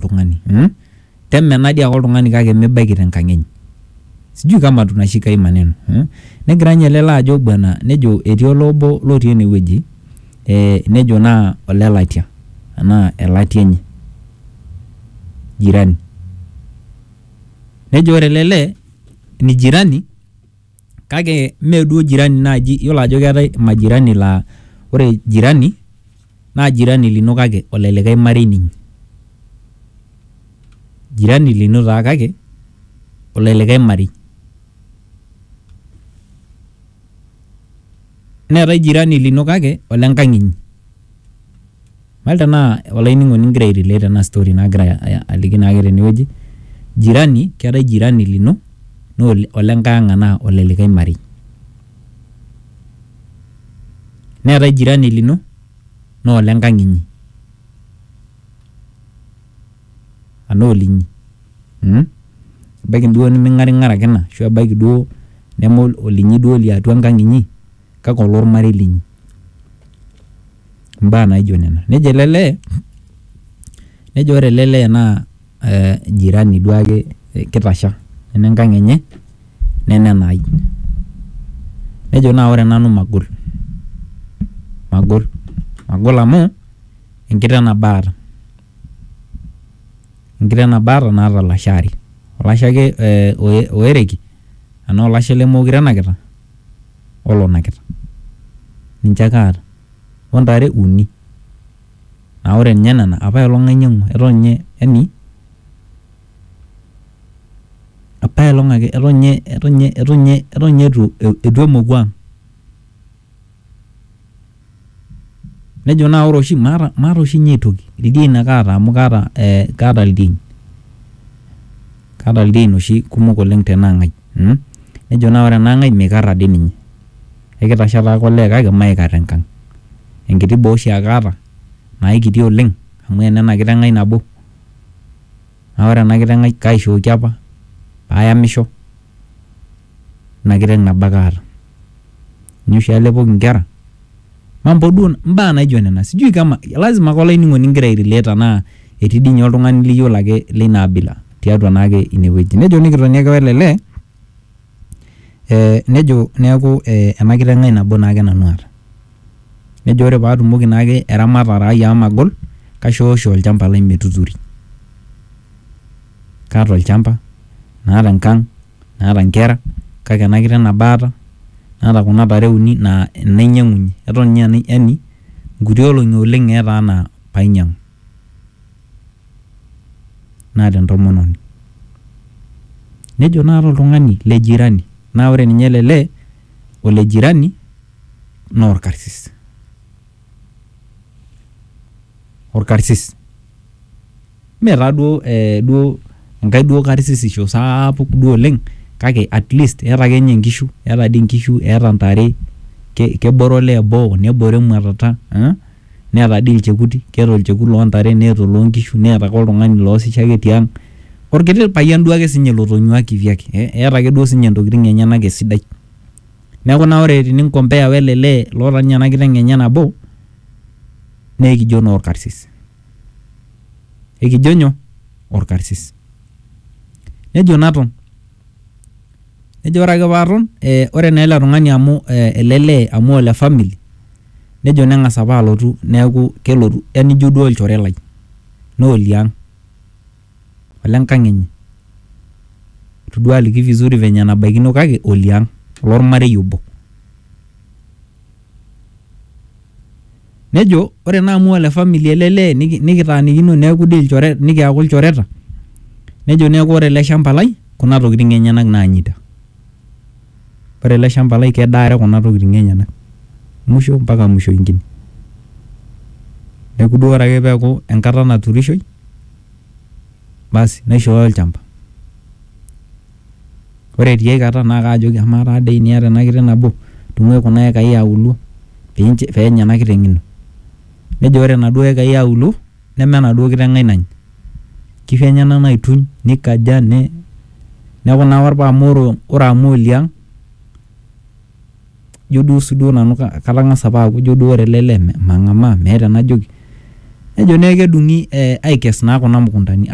tung'ani mm? temenadi ake oltung'ani kake mibaiki tenkang enye sijui kama tunashika hii maneno mm? negira ninye lelo ajo bwana nejo etii olobo lotii enewueji eh, nejo naa olelatia anaa elatia enye jirani nejo ore lele ni jirani Kake mee duo jirani naaji, iyiolo ajo keetae majirani laa ore jirani naa jirani lino kake ole likae marei ninye. Jirani lino taa kake ole likae marei. Neetae jirani lino kake ole nkang inyi. Mal tenaa olainining'oni igira airelate ena story nagira aliki naake tenewueji, jirani keetae jirani lino naa olenkae ang' anaa ole likae marei. Neetae jirani lino naa olenkang' inyi anaa olinyi mmh. Ebaiki duo niming'aring'arakina ashu ebaiki duo neme olinyi duo liatua enkang' inyi kake ololmarei linyi. imbaa naijo nena nejo ele lee nejo ore ele lee naa eh jirani duo ake kitasha neme enkang enye neme enai nejo naa ore nanu magol, magol, magol amu enkiteng nabo aata enkiteng nabo aata naata ilasho aare olashe ake eh oereki enaa olashe lemokure enakita. olonakita ninche ake aata ontare uni naa ore ninye nena apaelong ainyiang'ua eton ninye yani apaelong ake eton ninye eton ninye eton ninye eton ninye etu emoku ang. nejo naa ore oshi maata maata oshi ninye aitoki ildiain ake aata amu kaata eh, kaata ildiain kaata ildiain oshi kumok oleng tenaang'ai mm? nejo naa ore enaang'ai mikarra dii ninye ekitasha taake olee kake maikarra enkang enkiti boo oshi ake aata naikiti oleng amu enena kiteng ai nabo naa ore ena kiteng ai kaishooki apa payamisho ina kiteng nabo ake aata. ninye oshi alepoki nkera mambo duo mbaa naijo nena sijui kama lazima ake olainining'oni ingira airelate anaa etii dii ninye oltung'ani liyiolo ake leina abila tiatua naake inewueji nejo nikitoni ake wele lee eh, nejo neeku eh, ena kiteng ai nabo naake nanu aata nejo ore paatumoki naake eramatare ai amu magol kaishoosho olchamba lai metuturi kaata olchamba naata enkang. naata inkera kake ena kiteng nabo aata naata kuna tare uni naa inainyang'unyie eton ninye aa yani inkuti olong'i oleng etaa anaa painyiang'u naata entomononi nejo naata oltung'ani le jirani naa ore ninye ele lee ole jirani naa orkarsis. orkarsis. Mee taa duo ee duo enkae duo karsisisho sapuk duo oleng' kake at least eeta ake nye nkishu, eeta dii nkishu, eeta ntare, ke kebore olee boo, nebore emwatata aa neeta dii ilchekuti, keeta olchekut loo ntare, neeta oloo nkishu, neeta ake oltung'ani loosisho ake tiang', orkiti payian duake siinye lotonyua kivyake ee eeta ake duo siinye ntokitin enyenak esidai. Neaku naa ore tininkompea wele lee loota ninye ena kiteng enye nabo naa ekijo naa olkarsis. Ekijo nyoo? Olkarsis. Nejo naton, nejo ore ake paaton ore naa ele tung'ani amu ele lee amu ole family nejo neng'as apa alotu neaku kelotu yaani ijo duo olchore lai naa oliang'. ole nkang enye. Eitu duo aliki vizuri venye enabaikino kake oliang, ololmarei obo. Nejo ore naa amu ole family ele lee nikitaanikino neaku dii ilchoreta, nikiaku ilchoreta nejo neaku ore ele shamba lai kuna tokitin enyenak naanyita. Ore ele shamba lai kedaare kuna tokiting enyenak. Musho mpaka musho ingine. Neeku duo ore ake peeku enkata naturishoi, basi naishooyo olchamba. Ore tiai kata, na kajoki amaa tadii teniata ena kiteng' nabo, tung'ai kuna ekai eauluo, penya ena kiteng' ino. Nejo ore naduo ekai eauluo. Neme enaduo kiteng ai nany. Nkishu enyena naituny, neikaja, neaku naa ore paa amu ore amu oliang, ijo duo sii duo nanu katang'asa apa aaku ijo duo ore ele lee mang'amaa, meeta enajoki. Nejo naa ekedung'i aikes naa kuna mukuntani.